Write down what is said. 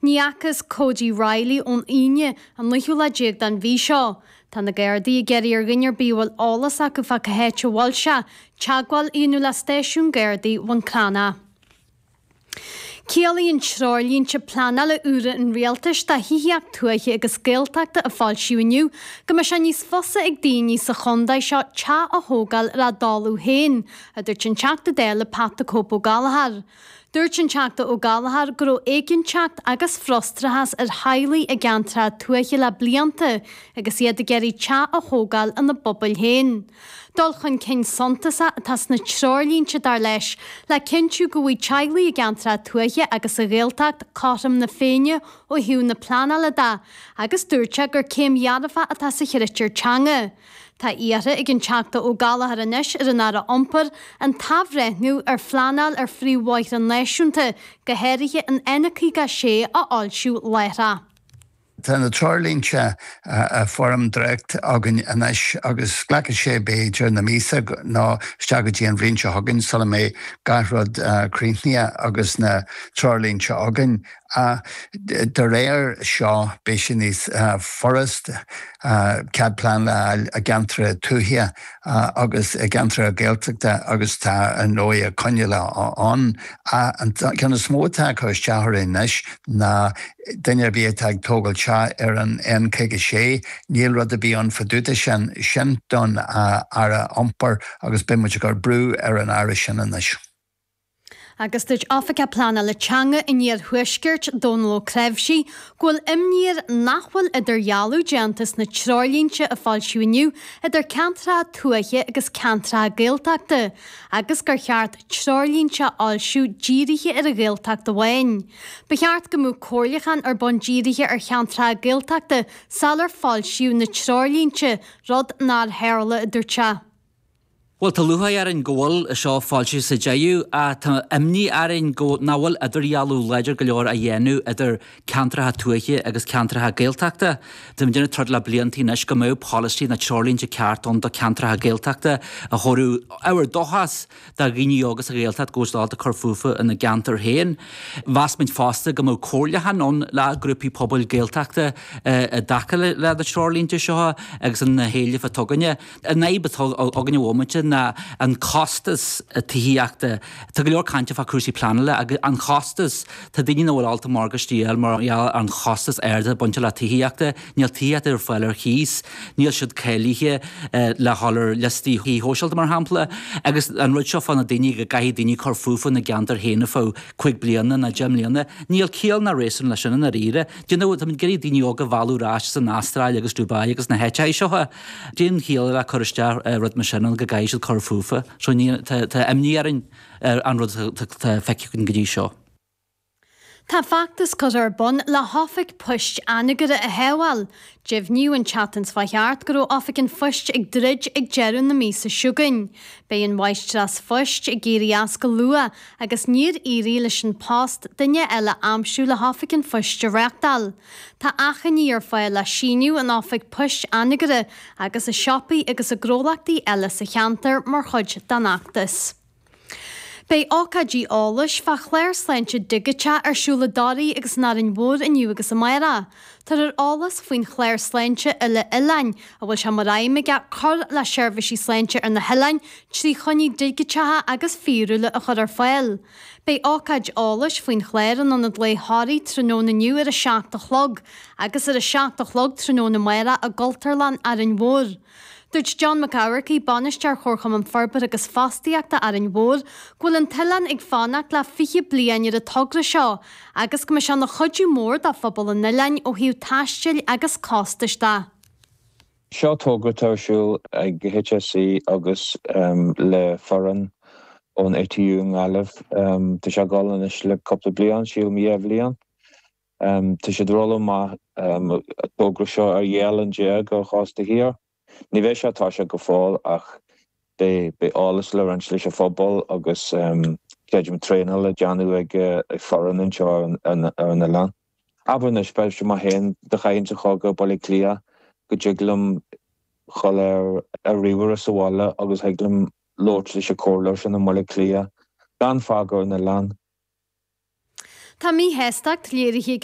Ní fhacas Cody Reilly ón Aoine, an naoú lá déag den mhí seo. Tá na Gardaí ag iarraidh ar dhuine ar bith a bhfuil eolas acu fá cá háit a bhfuil sé, teagmháil a dhéanamh le Stáisiún Gardaí Bhun Clána. Ciallaíonn treoirlínte pleanála úra an Rialtais do thithíocht tuaithe agus Gaeltachta a foilsíodh inniu go mbeidh sé níos fusa ag daoine sa chontae seo teach a thógáil ar a dtalamh féin, a dúirt an Teachta Dála Pat the Cope Ó Gallchóir. Dúirt an Teachta Ó Gallchóir go raibh éiginnteacht agus frustrachas ar theaghlaigh i gceantracha tuaithe le blianta agus iad ag iarraidh teach a thógáil ina bpobail féin. Dul chun cinn suntasach atá sna treoirlínte, dar leis, le cinntiú go bhfaighidh teaghlaigh i gceantracha tuaithe agus sa Ghaeltacht cothrom na féinne ó thaobh na pleanála de agus dúirt sé gur céim dhearfach atá sa chritéar teanga. Tá iarrtha ag an Teachta Ó Gallchóir anois ar an Aire Iompair an t-athbhreithniú ar phleanáil ar phríomhbhóithre náisiúnta, go háirithe an N56, a fhoilsiú láithreach. Tá na treoirlínte i bhfoirm dréacht againn anois agus glacfaidh sé b'fhéidir na míosa nó isteach go dtí an bhliain seo chugainn sula mbeidh gach rud críochnaithe agus na treoirlínte againn ach de réir seo beidh sé níos furast cead pleanála i gceantracha tuaithe agus i gceantracha Gaeltachta agus tá ar ndóigh coinníollacha ann ach an ceann is mó atá ag cur isteach orainn anois ná duine ar bith atá ag tógáil teach ar an N56 níl rud ar bith ann fa dtaobh de sin, sin don Aire Iompair agus beidh muid ag cur brú ar an Aire sin anois. Agus dúirt Oifigeach Pleanála Teanga an Iarthuaiscirt, Dónal Ó Cnáimhsí, go bhfuil imní air nach bhfuil idirdhealú déanta sna treoirlínte a foilsíodh inniu idir ceantracha tuaithe agus ceantracha Gaeltachta agus gur cheart treoirlínte a fhoilsiú dírithe ar an Ghaeltacht amháin. Ba cheart go mbeadh comhairliuchán ar bun dírithe ar cheantracha Gaeltachta sular foilsíodh na treoirlínte, rud nár tharla, a dúirt sé. Bhuel, tá lúcháir orainn go bhfuil seo foilsithe sa deireadh, ach tá imní orainn go nach bhfuil idirdhealú láidir go leor á dhéanamh idir ceantracha tuaithe agus ceantracha Gaeltachta. Tá muid ag déanamh troid le blianta anois go mbeadh polasaí nó treoirlínte ceart ann do ceantracha Gaeltachta a thabharfadh ábhar dóchais do dhaoine óga sa Ghaeltacht go bhfuil siad ábalta cur fúthu ina gceantar féin. Mheas muid fosta go mbeadh comhairliúchán ann le grúpaí pobail Gaeltachta i dtaca leis na treoirlínte seo agus na héilimh atá againne. An fhadhb atá againn ag an bhomaite ná an costas tithíochta. Tá go leor cainte fá chúrsaí pleanála agus an costas. Tá daoine nach bhfuil ábalta morgáiste a dhíol mar gheall ar an chostas ard atá bainte le tithíochta. Níl tithíocht ar fáil ar chíos. Níl siad cáilithe le dhul ar liostaí tí shóisialta mar shampla. Agus an rud seo fá na daoine go gcaithfidh daoine cur fúthu ina gceantar féin fá cúig bliana ná deich mbliana. Níl ciall ná réasún le sin i ndáiríre. D'you know, táimid ag iarraidh daoine óga a mhealladh ar ais as an Astráil agus Dubai agus na háiteachaí seo. Níl aon chiall le cur isteach rud mar sin go gcaithfidh siad cur fúthu. Tá imní orainn ar an rud atá feicthe againn go dtí seo. Tá feachtas curtha ar bun le hOifig Poist Anagaire a shábháil. Deimhníodh an tseachtain seo thart go raibh Oifig an Phoist ag druid ag deireadh na míosa chugainn. Beidh an Mháistreás Phoist ag éirí as go luath agus níor éirigh leis An Post duine eile a aimsiú le hOifig an Phoist a reachtáil. Tá achainí ar fáil le síniú in Oifig Poist Anagaire agus i siopaí agus i ngnólachtaí eile sa cheantar mar chuid den fheachtas. Beidh ócáidí eolais fá chlár sláinte digiteach ar siúl i dToraigh agus in Árainn Mhór inniu agus amárach. Tabharfar eolas faoin chlár sláinte uile-oileáin a bhfuil sé mar aidhm aige cur le seirbhísí sláinte ar na hoileáin trí choinní digiteacha agus fíorúla a chur ar fáil. Beidh ócáid eolais faoin chlár in Ionad Lae Thoraí tráthnóna inniu ar a seacht a chlog agus ar a seacht a chlog tráthnóna amárach i gCultúrlann Árainn Mhór. Dúirt John Mac Eamharcaigh, Bainisteoir Chomharchumann Forbartha agus Fostaíochta Árainn Mhór, go bhfuil an t-oileán ag fanacht le fiche bliain ar an togra seo agus go mbeidh sé ina chuidiú mór do phobal an oileáin ó thaobh taistil agus costais de. Seo togra atá ar siúl ag HSE agus le foireann ón ATU i nGaillimh. Tá sé ag dul anois le cúpla bliain, sílim dhá bhliain. Tá siad ag rolladh amach an togra seo ar dhá oileán déag ón chósta thiar. Ní bheidh sé ag toiseacht go fóill ach beidh eolas le roinnt leis an phobal agus creidim traenáil le déanamh ag foireann anseo ar an oileán. Abair anois, b'fhéidir mé féin dá gcaithfinn dhul go Baile Átha Cliath go dtig liom dhul ar an ríomhaire sa bhaile agus thig liom labhairt leis an chomhairleoir sin i mBaile Átha Cliath gan fágáil an oileáin. Tá míshástacht léirithe